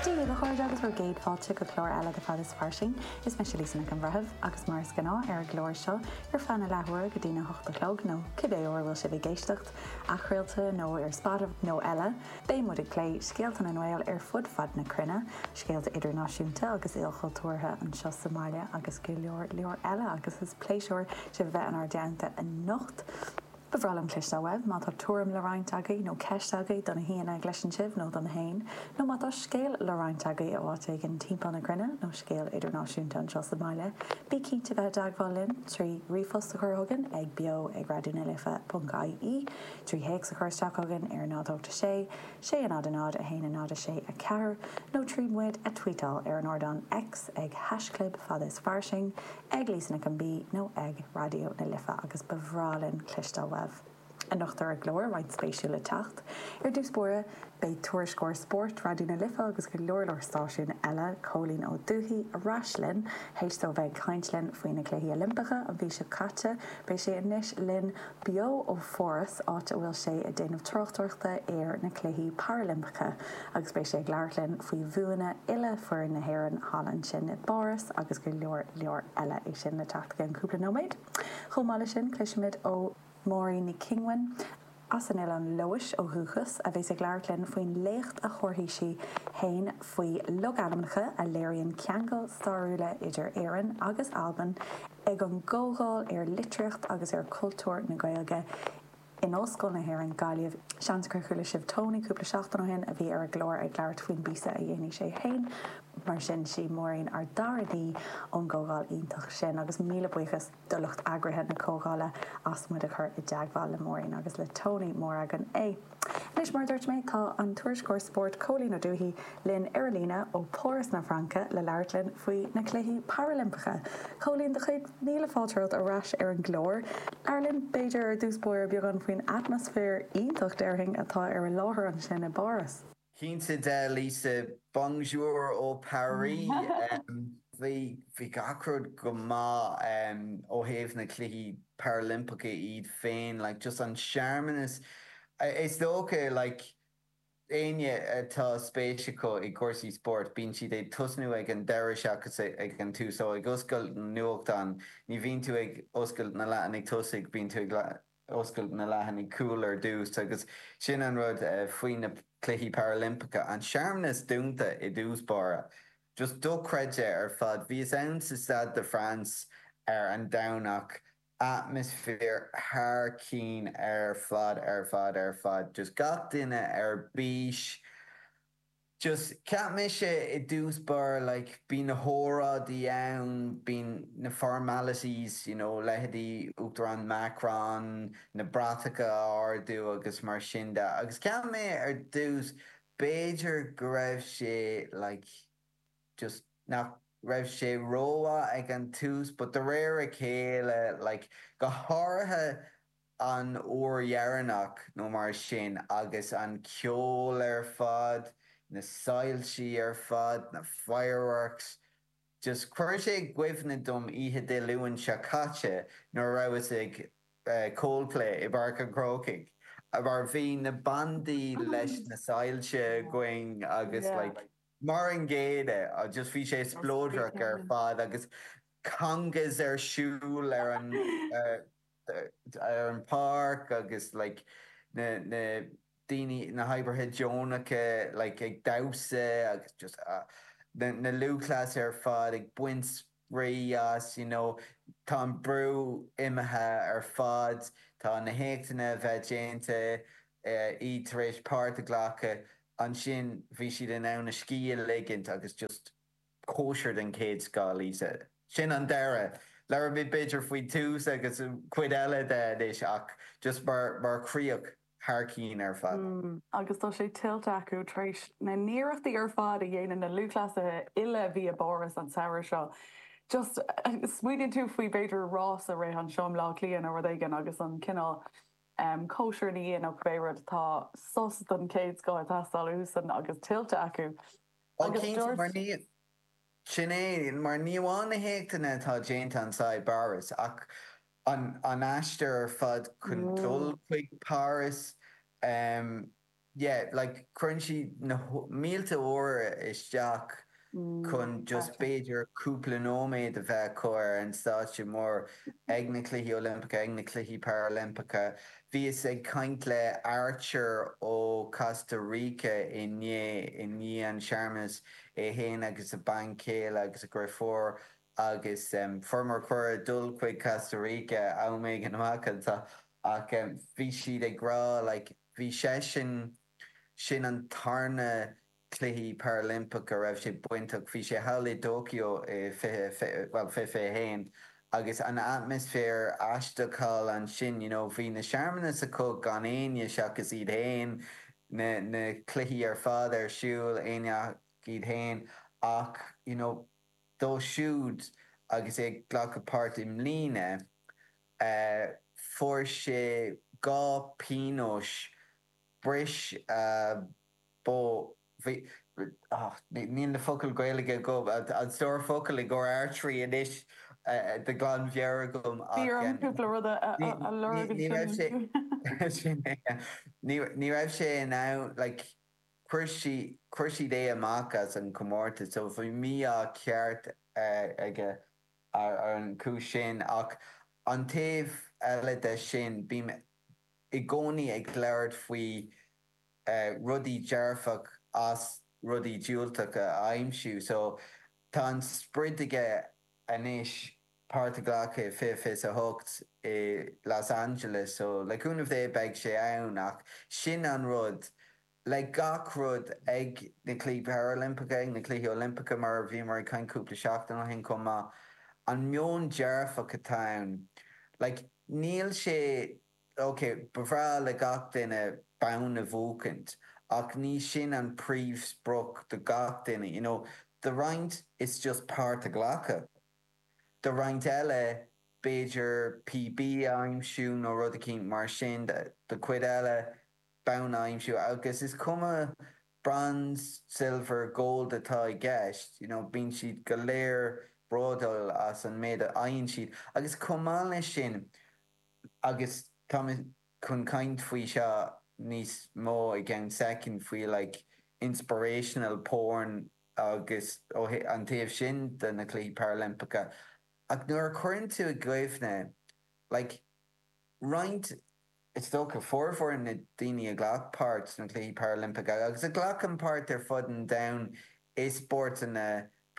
Dia dhaoibh a chairde agus bhur gcéad fáilte go clár eile de Fad is Fairsing. Is mise Lisa Nic an Bhreithimh, agus mar is gnáth ar an gclár seo, ar feadh na leathuaire go dtína hocht a chlog, nó cibé uair a bhfuil sibh ag éisteacht, athchraolta, nó ar Spotify, nó eile, beidh muid ag plé scéalta na nGael ar fud fad na cruinne, scéalta idirnáisiúnta agus ilchultúrtha, anseo sa mbaile, agus go leor, leor eile, agus is pléisiúr sibh a bheith inár dteannta anocht. Ba bhreá linn cloisteáil uaibh. Má tá tuairim le roinnt agaibh, nó ceist agaibh do na haíonna a gcloiseann sibh nó dom féin, nó má tá scéal le roinnt agaibh ó áit éigin timpeall na cruinne, nó scéal idirnáisiúnta anseo sa mbaile, bí cinnte bheith i dteagmháil linn trí ríomhphost a chur chugainn ag beo ag raidiónalife.ie, trí théacs a chur isteach chugainn ar 0 8 6 6 0 0 0 1 0 6 4, nó trí muid a tweetáil ar an ardán X ag haishchlib Fad is Fairsing, ag Lisa Nic an B nó ag Raidió na Life agus ba bhreá linn cloisteáil uaibh. Anocht ar an gclár roinnt spéisiúil le teacht. Ar dtús báire, beidh tuairisceoir spóirt Raidió na Life agus go leor leor stáisiún eile, Cóilín Ó Dufaigh, ar ais linn. Tar éis dó bheith ag caint linn faoi na Cluichí Oilimpeacha an mhí seo caite, beidh sé anois linn beo ó Pháras, áit a bhfuil sé ag déanamh tráchtaireachta ar na Cluichí Parailimpeacha, agus beidh sé ag labhairt linn faoi bhuanna uile fhoireann na hÉireann thall ansin i bPáras agus go leor leor eile. É sin le teacht i gceann cúpla nóiméad. Chomh maith leis sin, cloisfimid ó Maureen NicFhionghuin, as Oileán Leodhais ó dhúchas, a bheas ag labhairt linn faoin léacht a thabharfaidh sí fhéin faoi logainmneacha a léiríonn ceangail stáiriúla idir Éirinn agus Albain, Ag an gcomhdháil ar Litríocht agus ar Chultúr na Gaeilge in Ollscoil na hÉireann, Gaillimh, seans gur chuala sibh Tony cúpla seachtain ó shin, a bhí ar an gclár ag labhairt faoin bpíosa a dhéanfaidh sé féin. Mar sin, 'sí Maureen ár dara haoi ón gcomhdháil iontach sin, agus míle buíochas do lucht eagraithe na comhdhála as muid a chur i dteagmháil le Maureen agus le Tony, is mór againn é! Anois, mar a dúirt mé, tá an tuairisceoir spóirt Cóilín Ó Dufaigh linn ar an líne ó Pháras na Fraince le labhairt linn faoi na Cluichí Parailimpeacha. Cóilín, do chéad míle fáilte romhat ar ais ar an gclár. Labhair linn, b'fhéidir, ar dtús báire beagán faoin atmaisféar iontach déarfainn atá ar an láthair ansin i bPáras. Cinnte de, Lisa. Bonjour ó Paris. Beagáinín go maith ó thaobh na Cluichí Parailimpeacha iad féin, like just an searmanas, is dócha like éinne atá spéis acu i gcúrsaí spóirt, bíonn siad ag tosnú ag an deireadh seachas ag an tús. So ag oscailt nuachtán, ní bhíonn tú ag oscailt na leathanaigh tosaigh, bíonn tú ag oscailt na leathanaigh cúil ar dtús agus sin an rud faoi na Cluichí Parailimpeacha, an searmanas dúnta i dtús báire. Just dochreidte ar fad. Bhíos ann sa Stade de France ar an Domhnach, atmaisféar thar cinn ar fad ar fad ar fad. Just gach duine ar bís. just cheap mé i dtús báire like bíonn na hóráidí ann bíonn na formalities you know leithéidí Uachtarán Macron na bratacha a ardú agus mar sin de agus cheap mé ar dtús b'fhéidir go raibh sé like just nach raibh sé rómhaith ag an tús but de réir a chéile like go háirithe An uair dheireanach nó mar sin agus an ceol ar fad, na soilsí ar fad, na fireworks, just chuir sé i gcuimhne dom oíche Dé Luain seo caite nuair a bhíos ag Coldplay i bPáirc an Chrócaigh mar bhí na bandaí leis na soilse againn agus like mar an gcéanna just bhí sé spleodrach ar fad agus congas ar siúl ar an ar an páirc agus like na na daoine na hoibrithe deonacha like ag damhsa agus just ah na na lúthchleasaithe ar fad ag baint spraoi as you know tá an brú imithe ar fad tá na héachtanna ar fad déanta iad tar éis páirt a ghlacadh ansin bhí siad in ann a scíth a ligint agus just cóisir den chéad scoth, Lisa. Sin an deireadh Labhair mé, b'fhéidir, faoin tús, agus cuid eile de anois ach just mar chríoch thar cinn ar fad. Agus tá sé tuillte acu, tar éis na n-iarrachtaí ar fad a dhéanann na lúthchleasaithe uile a bhí i bPáras an samhradh seo. Just, smaoiníonn tú faoi b'fhéidir rás a rith anseo i mBleá Cliath nó rud éigin, agus an cineál em cóisir ina dhiaidh nó cibé rud, tá sos den chéad scoth ag teastáil uathusan agus tuillte acu. Sin é, mar ní amháin na héachtanna atá déanta anseo i bPáras, ach an, an aistear ar fad chun dul chuig Páras, em, yeah, like, cuireann siad na, mílte uaire isteach chun just b'fhéidir cúpla nóiméad a bheith acu ar an stáitse mór, ag na Cluichí Oilimpeacha, ag na Cluichí Parailimpeacha, Bhíos ag caint le Archer ó Costa Rica inné i ndiaidh an searmanas, é fhéin agus a bean chéile agus a dhriofúr agus fuaireamar cuireadh dul chuig Costa Rica am éigin amach anseo ach bhí siad ag rá like bhí seisean sin an tarna Cluichí Parailimpeacha a raibh sé bainteach. Bhí sé thall i dTóiceo i 2021 agus an atmaisféar aisteach thall ansin, you know, bhí na searmanais acu gan éinne seachas iad fhéin, na, na cluichí ar fad ar siúl, éinne ach iad fhéin ach, you know, dó siúd agus é ag glacadh páirt i mbliana, eh, fuair sé dhá pionóis, bris bow bhí ach níl na focail Gaeilge agam an stór focal i gcomhair archery anois de ghlanmheabhair agam ach ní ní raibh sé in ann like chuir sí chuir siad é amach as an comórtas so bhí mí ádh ceart aige ar an chúis sin ach an taobh eile de sin bím i gcónaí ag labhairt faoi rudaí dearfach as rudaí diúltach a aimsiú so tá an sprid aige anois páirt a ghlacadh i fiche fiche is a hocht i Los Angeles so le cúnamh Dé beidh sé ann ach sin an rud le gach rud ag na cluichí parailimpeacha ag na cluichí oilimpeacha mar a bhíomar ag caint cúpla seachtain ó shin chomh maith an meon dearfach atá ann like níl sé OK, ba bhreá le gach duine bonn a bhuachaint, ach ní sin an príomhsprioc do gach duine, you know. Do roinnt, it's just páirt a ghlacadh. Do roinnt eile, b'fhéidir PB a aimsiú nó rud eicínt mar sin. Do chuid eile, bonn a aimsiú, agus is cuma bronze, silver, gold atá i gceist, you know, bíonn siad go léir bródúil as an méid a fhaigheann siad. Agus chomh maith leis sin, agus tá mé chun caint faoi seo níos mó i gceann soicind, faoi like inspirational porn agus ó an taobh sin de na Cluichí Parailimpeacha, ach nuair a chuireann tú i gcuimhne like roinnt, is dócha, formhór na daoine a ghlac páirt sna Cluichí Parailimpeacha agus a ghlacann páirt ar fud an domhain i spórtanna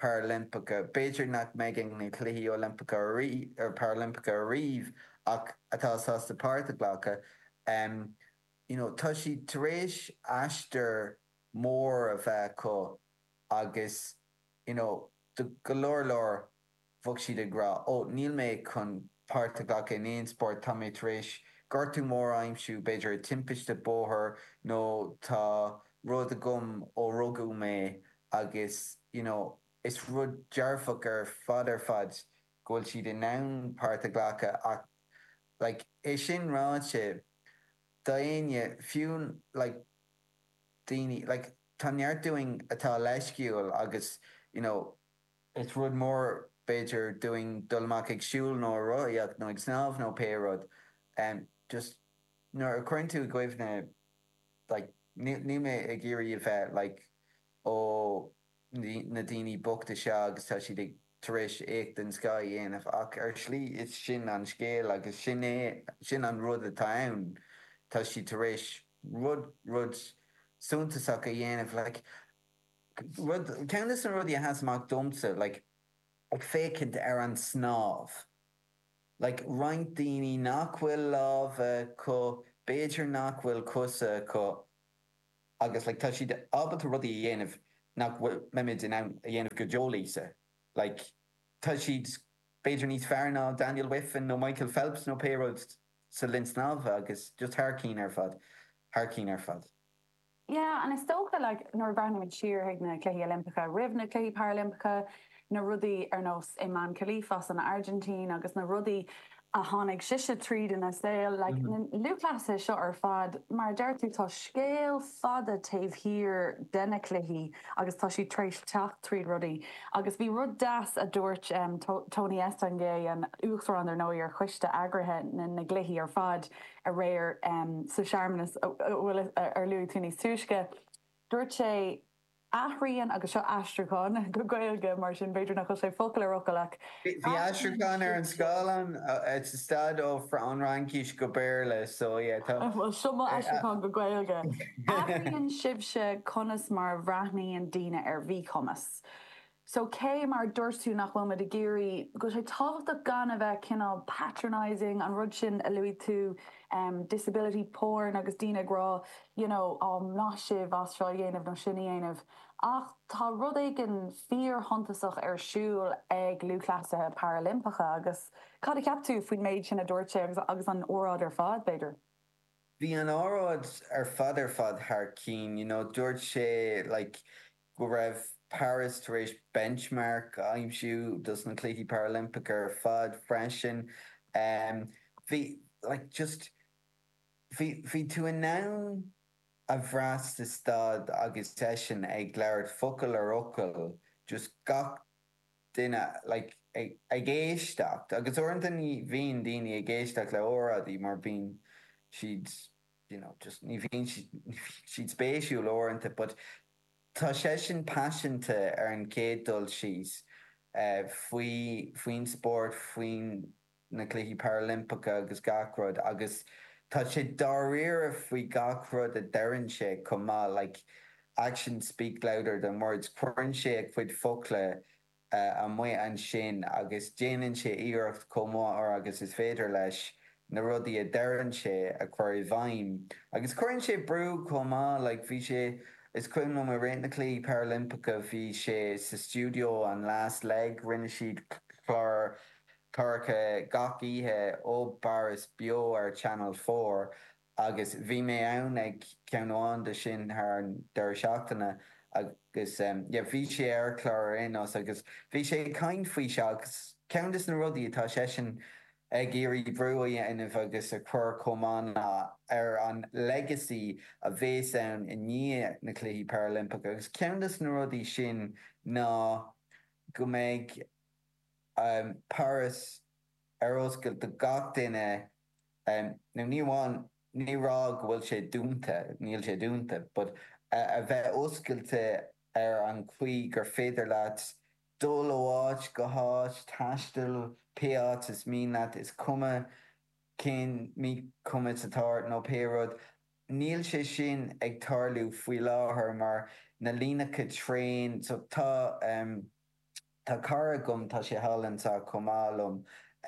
Parailimpeacha. B'fhéidir nach mbeidh ag na Cluichí Oilimpeacha, Parailimpeacha ariamh ach atá sásta páirt a ghlacadh. You know, tá siad tar éis aistear mór a bheith acu agus, you know, do go leor leor, bheadh siad ag rá, ó, níl mé chun páirt a ghlacadh in aon spórt, tá mé tar éis gortú mór a aimsiú, b'fhéidir i timpiste bóthair nó tá rud agam ó rugadh mé Agus you know is rud dearfach ar fad ar fad go bhfuil siad in ann páirt a ghlacadh ach like é sin ráite, do éinne, fiú like daoine like tá neart dínn atá leisciúil agus you know is rud mór b'fhéidir dúinn dul amach ag siúl nó ag rothaíocht nó ag snámh nó pé rud em just nuair a chuireann tú i gcuimhne like níl mé ag iarraidh a bheith like ó na daoine bochta seo agus tá siad tar éis éacht den scoth a dhéanamh ach ar shlí is sin an scéal agus sin é, sin an rud atá ann, tá siad tar éis rud, rud suntasach a dhéanamh like rud, ceann de na rudaí a sheas amach domsa like ag féachaint ar an snámh. like roinnt daoine nach bhfuil lámha acu, b'fhéidir nach bhfuil cosa acu agus like tá siad ábalta rudaí a dhéanamh nach bhfuilimid in ann a dhéanamh go deo, Lisa. Like tá siad b'fhéidir níos fearr ná Daniel Wiffen nó Michael Phelps nó pé rud sa linn snámha agus just thar cinn ar fad, thar cinn ar fad. Yeah and is dócha like nuair a bhreathnaímid siar chuig na Cluichí Oilimpeacha, roimh na Cluichí Parailimpeacha, na rudaí ar nós Imane Khelif san Airgintín agus na rudaí a tháinig sise tríd ina saol, like na lúthchleasaithe seo ar fad, mar a deir tú tá scéal fada taobh thiar de na cluichí agus tá siad tar éis teacht tríd rudaí agus bhí rud deas a dúirt Tony Estanguet, an tUachtarán ar ndóigh, ar choiste eagraithe na gcluichí ar fad, aréir sa searmanas ar luaigh tú níos túisce, dúirt sé athraíonn, agus seo aistriúchán go Gaeilge, mar sin b'fhéidir nach bhfuil sé focal ar fhocal ach Bhí aistriúchán ar an scáileán, sa staid ó Fhraincis go Béarla, so yeah, tá. Bhuel, seo m'aistriúchán go Gaeilge, athraíonn sibhse conas mar a bhreathnaíonn daoine ar mhíchumas. So cé, mar a dúirt tú, nach bhfuilimid ag iarraidh, go bhfuil sé tábhachtach gan a bheith cineál patronising, an rud sin a luaigh tú, disability porn agus daoine ag rá you know ó maith sibh as seo a dhéanamh nó sin a dhéanamh ach tá rud éigin fíorshuntasach ar siúl ag lúthchleasaithe parailimpeacha agus cad a cheap tú faoin méid sin a dúirt sé agus agus an óráid ar fad b'fhéidir? Bhí an óráid ar fad ar fad thar cinn you know dúirt sé like go raibh Paris tar éis benchmark a aimsiú dos na Cluichí Parailimpeacha ar fad freisin. Bhí like just bhí bhí tú in ann a bhrath sa staid agus eisean ag labhairt focal ar fhocal just gach duine like ag ag éisteacht agus uaireanta ní bhíonn daoine ag éisteacht le hóráidí mar bíonn siad you know, just ní bhíonn siad, ní bhíonn siad spéisiúil uaireanta but tá seisean paiseanta ar an chéad dul síos faoi, faoin spórt, faoi na Cluichí Parailimpeacha agus gach rud agus tá sé dáiríre faoi gach rud a deireann sé chomh maith, like, actions speak louder than words, cuireann sé a chuid focla amuigh ansin agus déanann sé iarracht chomh mór agus is féidir leis na rudaí a deireann sé a chur i bhfeidhm. Agus cuireann sé brú chomh maith, like bhí sé, is cuimhin liom i rith na Cluichí Parailimpeacha bhí sé sa stiúideo an last leg, rinne siad clár cláracha gach oíche ó bParas beo ar Channel Four, Agus bhí mé ann ag ceann amháin de sin thar an deireadh seachtaine agus yeah bhí sé ar chlár ar aon nós agus bhí sé ag caint faoi seo agus ceann de na rudaí atá seisean ag iarraidh brú a dhéanamh agus a chur chomh maith ná ar an legacy a bhéas ann i ndiaidh na Cluichí Parailimpeacha agus ceann de na rudaí sin ná go mbeidh Paras ar oscailt do gach duine nó ní amháin, nílim ag rá go bhfuil sé dúnta, níl sé dúnta, but a bheith oscailte ar an gcaoi gur féidir leat dul ó áit go háit, taisteal pé áit is mian leat, is cuma cén míchumas atá ort nó pé rud. Níl sé sin ag tarlú faoi láthair mar na líneacha traein, so tá. Tá cara agam, tá sé thall anseo chomh maith liom,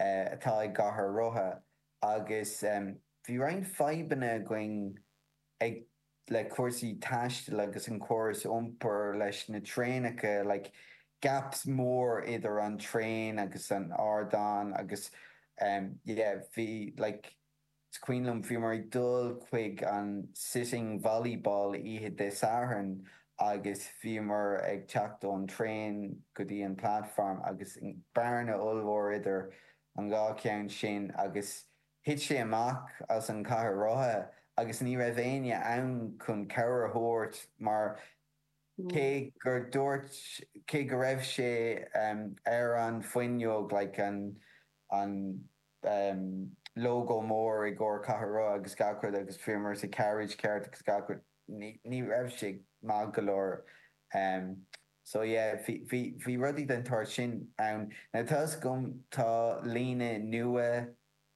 atá i gcathaoir rotha agus bhí roinnt fadhbanna againn ag le cúrsaí taistil agus an córas iompair leis na traenacha, like gaps mór idir an traein agus an ardán agus yeah, bhí like, Is cuimhin liom, bhíomar ag dul chuig an Sitting Volleyball oíche Dé Sathairn agus bhíomar ag teacht ón traein go dtí an platform agus bearna ollmhór idir an dhá cheann sin agus thit sé amach as an chathaoir rotha agus ní raibh éinne ann chun cabhair a thabhairt mar Cé gur dúirt cé go raibh sé ar an fuinneog like an an lógó mór i gcomhair cathaoir rotha agus gach rud agus bhíomar sa carriage ceart agus gach rud ní raibh sé maith go leor. So yeah bhí rudaí den tsórt sin ann. Now tá 'fhios agam tá líne nua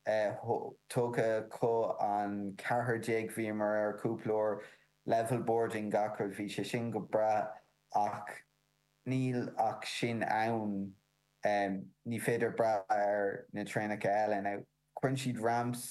tógtha acu an ceathrar déag bhíomar air cúpla uair, level boarding gach rud, bhí sé sin go breá ach níl ach sin ann ní féidir brath ar na traenacha eile now cuireann siad ramps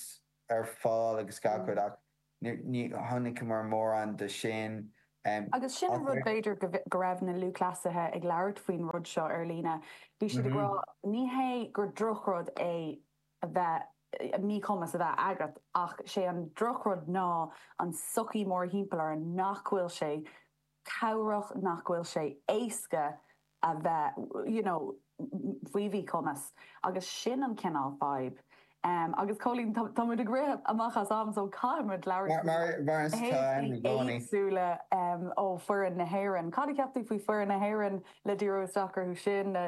ar fáil agus gach rud ach Ní chonaiceamar mórán de sin, Agus sin an rud b'fhéidir, go raibh na lúthchleasaithe ag labhairt faoin rud seo ar líne. Bhí siad ag rá, ní hé gur drochrud é a bheith, míchumas a bheith agat, ach sé an drochrud ná an sochaí mórthimpeall orainn nach bhfuil sé, cabhrach nach bhfuil sé éasca a bheith you know faoi mhíchumas agus sin an cineál fadhb em agus Colleen tá muid ag rith amach as am so caithfidh muid labhairt faoi mar mar is tá am i gcónaí éagsúla em ó foireann na hÉireann cad a cheap tú faoi foireann na hÉireann le díriú isteach orthu sin na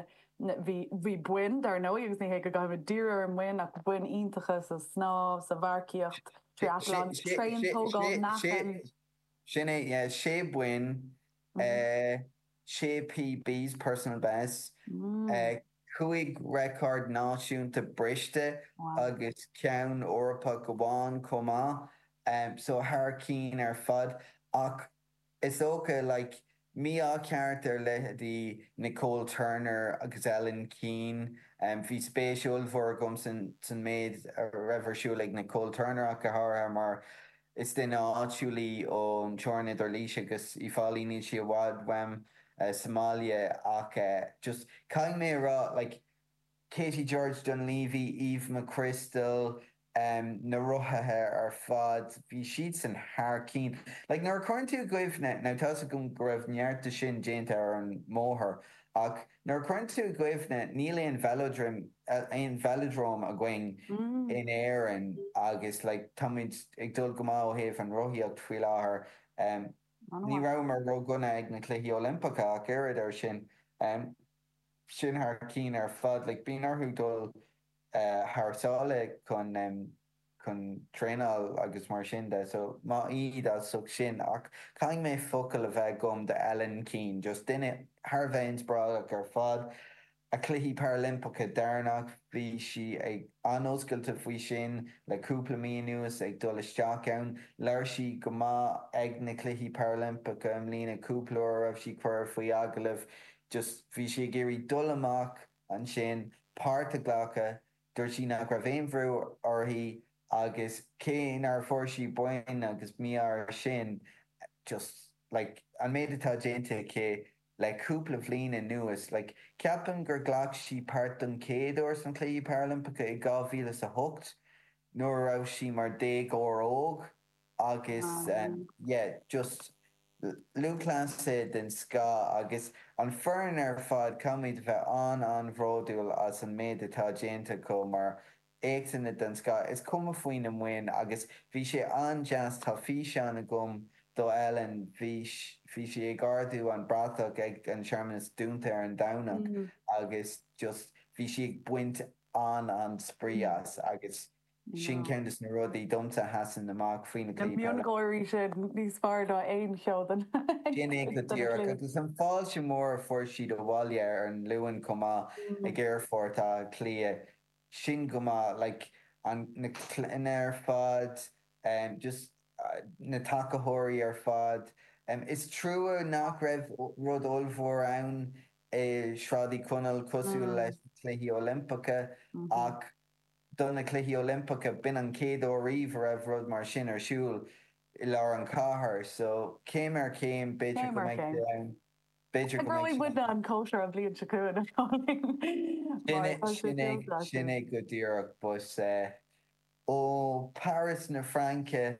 na bhí bhí boinn dar ndóigh agus ní hé go gcaithfimid díriú ar na mboinn ach boinn iontacha sa snámh sa mharcaíocht triathlon tréan tógáil meáchan Sin é, yeah, 6 boinn, 6 PBs, personal bests, 5 record náisiúnta briste agus ceann Eorpach amháin chomh maith, so thar cinn ar fad. Ach is dócha, like, Mí-ádh ceart ar leith do Nicole Turner agus Ellen Keane. Bhí spéis ollmhór agam san méid a raibh ar siúl ag Nicole Turner ach go háirithe mar is duine áitiúil í ón teorainn idir Laois agus Uí Fáilí. Níl sí i bhfad uaim sa mbaile ach just caithfidh mé a rá like, Katie George Dunlevy, Eve McCrystal, na rothaithe ar fad, bhí siadsan thar cinn. Like, nuair a chuireann tú i gcuimhne, now tá's agam go raibh neart de sin déanta ar an mbóthar, ach nuair a chuireann tú i gcuimhne, níl aon velodrome againn in Éirinn agus like táimid ag dul go maith ó thaobh an rothaíocht faoi láthair. Ní rabhamar ródhona ag na Cluichí Oilimpeacha ach oiread, ar sin. sin thar cinn ar fad. Like, bíonn orthu dul thar sáile chun, chun traenáil agus mar sin de. So, maith iad as ucht sin. Ach caithfidh mé focal a bheith agam do Ellen Keane, just duine thar a bheith inspioráideach ar fad. A Cluichí Parailimpeacha deireanach, bhí sí ag an-oscailte faoi sin le cúpla mí anuas, ag dul isteach ann. Labhair sí go maith ag na Cluichí Parailimpeacha i mbliana cúpla uair a raibh sí curtha faoi agallamh. just bhí sí ag iarraidh dul amach ansin, páirt a ghlacadh, dúirt sí nach raibh aon bhrú uirthi agus cé nár fuair sí boinn agus mí-ádh ar sin, just like an méid atá déanta aici le cúpla bhliain anuas, like ceapaim gur ghlac sí páirt don chéad uair sna Cluichí Parailimpeacha i 2000 is a hocht nuair a raibh sí mar déagóir óg. agus yeah just lúthchleasaí den scoth agus an foireann ar fad caithfimid a bheith an-an-bhródúil as an méid atá déanta acu mar éachtanna den scoth is cuma faoina mboinn agus bhí sé an-deas tá físeán agam do Ellen bhí sí ag ardú an bratach ag an searmanas dúnta ar an Domhnach agus just bhí sí ag baint an-an-spraoi as agus Sin ceann de na rudaí domsa a sheasann amach faoi na cliath peile. Na miongháirí sin níos fearr ná aon cheann acu Sin é go díreach. Agus an fáilte mhór a fuair siad abhaile ar an Luan chomh maith ag Aerfort Átha Cliath, sin go maith, like, an, na clainne ar fad, em, just na tacaitheoirí ar fad. Em, is trua nach raibh rud ollmhór ann i Sráid Uí Chonaill cosúil leis na Cluichí Oilimpeacha, ach. Do na Cluichí Oilimpeacha, b'in an chéad uair riamh a raibh rud mar sin ar siúl i lár an chathair. So, céim ar chéim, b'fhéidir go mbeidh sé ann, b'fhéidir go mbeidh sé ann. Eagróidh muidne an chóisir an bhliain seo chugainn, a Cholín, mar tá sé tuillte againn. Sin é go díreach. But, ó Paras na Fraince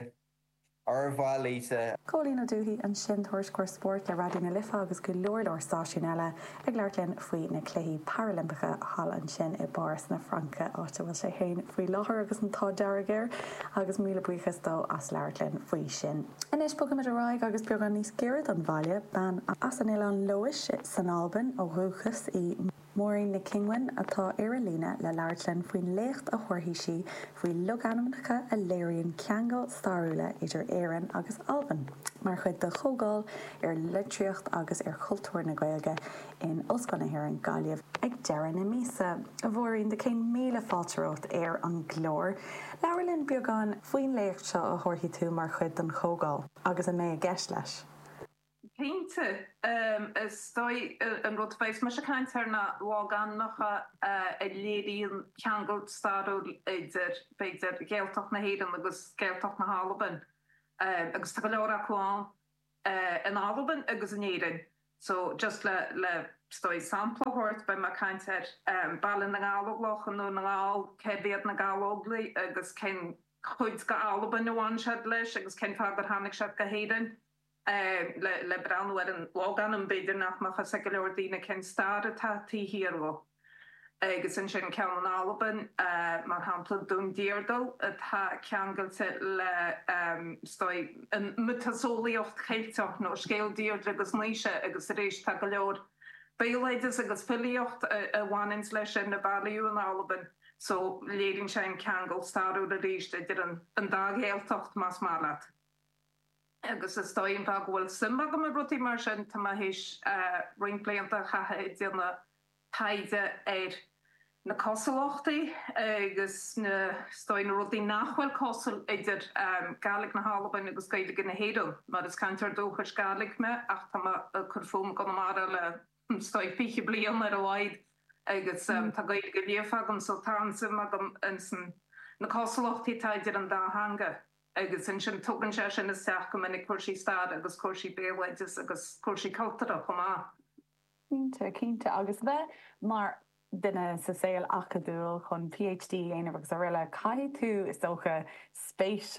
Ar mhaith leatsa. Cóilín Ó Dubhthaigh ansin, tuairisceoir spóirt le Raidió na Life agus go leor leor stáisiún eile, ag labhairt linn faoi na Cluichí Parailimpeacha thall ansin i bPáras na Fraince, áit a bhfuil sé féin faoi láthair agus an t-ádh dearg air, agus míle buíochas dó as labhairt linn faoi sin. Anois bogfaimid ar aghaidh agus beagán níos giorra don bhaile, bean as Oileán Leodhais san Albain ó dhúchas í, Máirín Nic Fhionghuin atá ar an líne le labhairt linn faoin léacht a thabharfaidh sí faoi logainmneacha a léiríonn ceangail stairiúla idir Éirinn agus Albain, mar chuid de chomhdháil ar litríocht agus ar chultúr na Gaeilge in Ollscoil na hÉireann, Gaillimh, ag deireadh na míosa. A Mháirín, do chéad míle fáilte romhat ar an gclár. Labhair linn beagán faoin léacht seo a thabharfaidh tú mar chuid den chomhdháil, agus a mbeidh i gceist leis. Cinnte, is dóigh an rud beidh mise ag caint ar na logainmneacha a léiríonn ceangal stairiúil idir, b'fhéidir, Ghaeltacht na hÉireann agus Gaeltacht na hAlban, agus tá go leor acu ann in Albain agus in Éirinn. So, just le, le, is dóigh, sampla a thabhairt, beidh mé ag caint ar Baile na nGallóglach i nDún na nGall, cérbh iad na Gallóglaigh agus cén chuid d'Albain a bhain siad leis agus cén fáth gur tháinig siad go hÉirinn? le breathnú ar an logainm, b'fhéidir nach mbeadh fhios ag go leor daoine cén stair atá taobh thiar dhó. Agus ansin ceann in Albain, mar shampla, Dún Deardail, atá ceangailte le, is dóigh, an mhiotaseolaíocht Cheilteach, nó scéal Deirdre agus Naoise, agus arís tá go leor béaloideas agus filíocht a bhaineann leis sin a bailíodh in Albain, so léiríonn sé an ceangal stairiúil arís idir an dá Ghaeltacht, más maith leat. agus is dóigh liom go bhfuil suim agam i rudaí mar sin, tá mé théis roinnt blianta a chaitheamh ag déanamh taighde ar na cosúlachtaí agus na, is dóigh, na rudaí nach bhfuil cosúil idir Gaidhlig na hAlban agus Gaeilge na hÉireann, mar is cainteoir dúchais Gaidhlig mé ach tá mé ag cur fúm i gConamara le, is dóigh, fiche bliain ar a laghad agus tá Gaeilge líofa agam so tá an-suim agam ins na cosúlachtaí atá idir an dá theanga. agus ansin tugann sé sin isteach go minic cúrsaí staire agus cúrsaí béaloideas agus cúrsaí cultúrtha chomh maith. Cinnte, cinnte. Agus bheith mar dhuine sa saol acadúil chun PhD a dhéanamh agus aroile, caithfidh tú, is dócha, spéis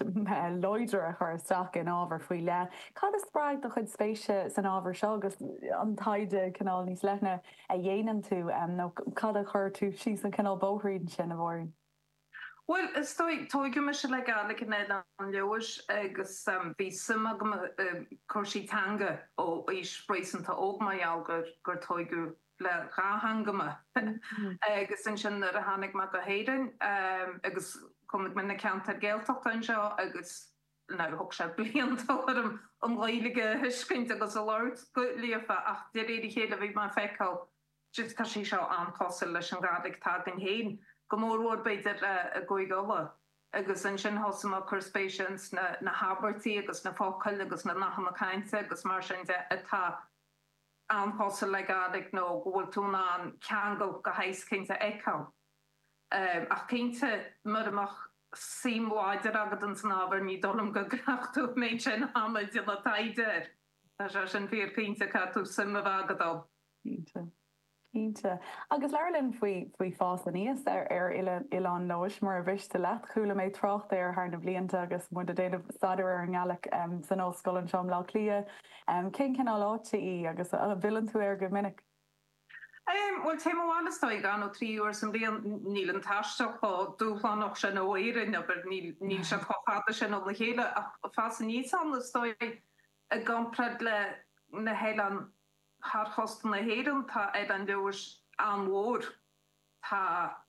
láidir a chur isteach in ábhar faoi leith. Cad a spreag do chuid spéise san ábhar seo agus an taighde cineál níos leithne a dhéanann tú, nó cad a chuir tú síos an cineál bóithrín sin, a Mháirín? Bhuel, is dóigh, tóigeadh mise le Gaidhlig in Oileán Leodhais agus bhí suim agam i cúrsaí teanga ó aois réasúnta óg mar gheall gur tóigeadh le dhá theanga mé agus ansin nuair a tháinig mé go hÉirinn agus chonaic mé na ceantair Gaeltachta anseo agus ó thóg sé blianta orm an Ghaeilge a thuiscint agus a labhairt go líofa ach de réir a chéile bhí mé ag feiceáil Cic, Tá sé seo an-chosúil leis an Ghaidhlig atá agam féin, go mór mhór b'fhéidir i gCúige Uladh. Agus ansin thosaigh mé ag cur spéise ins na habairtí agus na focail agus na nathanna cainte agus mar sin de atá an-chosúil le Gaidhlig nó go bhfuil tú in ann ceangal de shaghas éicint a fheiceáil. Ach cinnte, mura mbeadh suim láidir agat ins an ábhar ní dóigh liom go gcaithfeadh tú an méid sin ama ag déanamh taighde air. Tá sé sin fíor cinnte, caithfidh tú suim a bheith agat ann. Cinnte. Cinnte. Agus labhair linn faoi, faoi fás aníos ar, ar oileán, Oileán Leodhais, mura mhiste leat. Chuala mé trácht air thar na blianta agus muid ag déanamh staidéar ar an nGaidhlig san ollscoil anseo i mBleá Cliath. Cén cineál áit é agus an bhfilleann tú air go minic? Em, bhuel téim abhaile is dóigh, dhá nó trí uair sa mbliain. Níl an taisteal chomh dúshlánach sin ó Éirinn, abair, níl, níl sé chomh fada sin óna chéile ach fás aníos ann is dóigh i gcomparáid le na hoileáin. Thar chósta na hÉireann tá Oileán Leodhais an-mhór. Tá,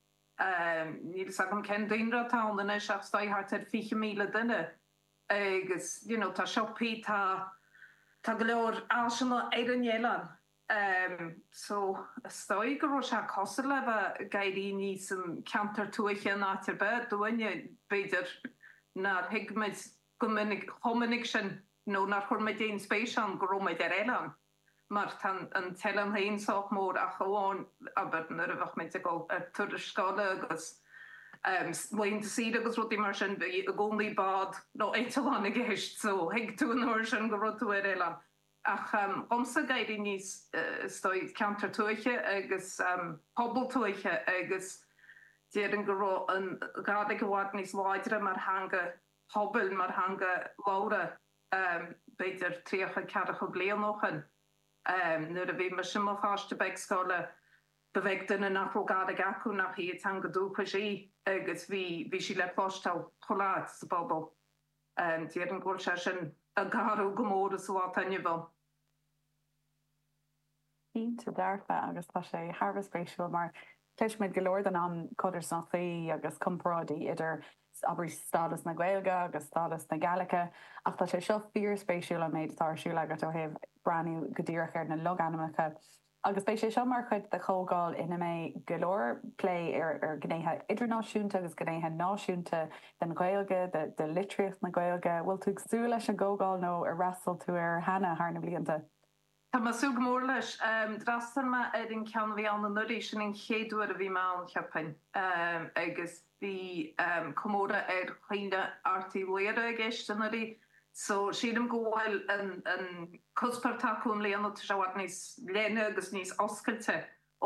níl fhios agam cén daonra atá ann anois ach is dóigh thart ar 20,000 duine agus you know tá siopaí, tá, tá go leor áiseanna ar an oileán. So is dóigh go raibh sé cosúil le bheith ag éirí aníos i gceantar tuaithe in áit ar bith, dúinne b'fhéidir nár thuig muid go minic, chomh minic sin, nó nár chuir muid aon spéis ann go raibh muid ar oileán, mar tá an t-oileán féin sách mór, ach amháin, abair, nuair a bheadh muid ag dul ar turas scoile agus laethanta saoire agus rudaí mar sin, bhí i gcónaí bád nó eitleán i gceist, so thuig tú an uair sin go raibh tú ar oileán. Ach dhomsa, ag éirí aníos, is dóigh, ceantar tuaithe agus pobal tuaithe, agus déarfainn go raibh an Ghàidhlig i bhfad níos láidre mar theanga phobail mar theanga labhartha, b'fhéidir tríocha ceathracha caoga bliain ó shoin. Nuair a bhí mise i mo pháiste beag scoile, ba bheag duine nach raibh Gàidhlig acu nach í a dteanga dúchais í, agus bhí bhí sí le cloisteáil chuile áit sa bpobal. Déarfainn go bhfuil sé sin ag athrú go mór sa lá atá inniu ann. cinnte dearfa agus tá sé thar a bheith spéisiúil mar cloisimid go leor den am codarsnachtaí agus comparáidí idir, abair, stádas na Gaeilge agus stádas na Gàidhlige ach tá sé seo fíorspéisiúil an méid atá ar siúl agat ó thaobh breathnú go díreach ar na logainmneacha agus beidh sé seo mar chuid de chomhdháil ina mbeidh go leor plé ar ghnéithe idirnáisiúnta agus gnéithe náisiúnta den Ghaeilge, de litríocht na Gaeilge. Bhfuil tú ag súil leis an gcomhdháil nó ar fhreastail tú uirthi cheana thar na blianta? Tá mé ag súil go mór leis. D'fhreastail mé ar an cheann a bhí ann anuraidh, sin an chéad uair a bhí mé ann, cheapfainn, agus bhí comóradh ar chaoineadh Airt Uí Laoghaire i gceist anuraidh, so sílim go bhfuil an cuspóir atá acu i mbliana, tá sé i bhfad níos leithne agus níos oscailte.